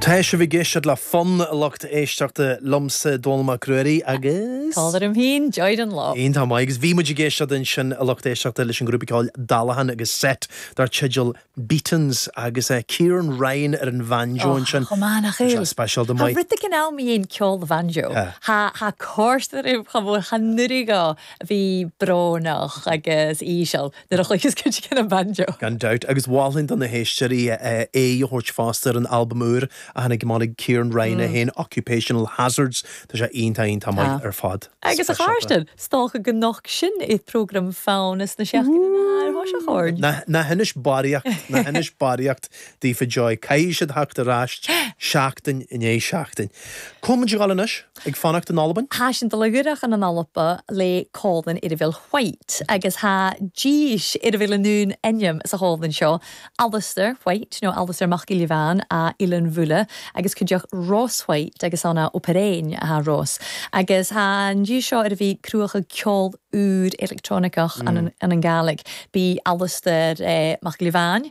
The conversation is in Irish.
Tá sibh ag éisteacht le Fonn, a lucht éisteachta, liomsa, Dónall Mac Ruairí, agus. Tá orm féin, Joy Dunlop. Iontach maith. Agus bhí muid ag éisteacht ansin, a lucht éisteachta, leis an ghrúpa ceoil Dallahan agus set dar teideal Beaton's, agus Ciaran Ryan ar an bhanjo ansin. Och, chomh maith, nach bhfuil? Bhí sé speisialta, maith. Tá rud éigin mu dheidhinn ceòl bhanjo. Tá, tha e còrdadh rium cho mòr, chan urrainn dhut a bhith brónach agus íseal. nuair a chluicheas cuideigin banjo. Gan dabht, agus mholfainn do na héisteoirí aghaidh a thabhairt fosta ar an albam úr a tháinig amach ag Ciaran Ryan é féin, Occupational Hazards, tá sé iontach iontach maith ar fad. Agus a Kharsten, 's dòcha gun nochd sin air prògram Fonn sna seachdainean air thoiseach oirnn. Ná hinis barraíocht, ná hinis barraíocht daofa Joy, caithfidh siad theacht ar ais seachtain i ndiaidh seachtain. Coinneoidh muid ag gabháil anois. Ag fanacht in Albain? Thá sin dlighreach in an Alpa lé colann ar a bhfuil White agus thá dís ar a bhfuil an aon ainm sa cholann seo, Alastair White nó Alastair Mac Giolla Bhean a' Ileann Bhulla agus cuid deoch Ross White agus an a' Operain thá Ross agus thá an dís seo ar a bhí cruacha ceol úr electronicach an an Gàidhlig bí Alastair Mac Giolla Bhean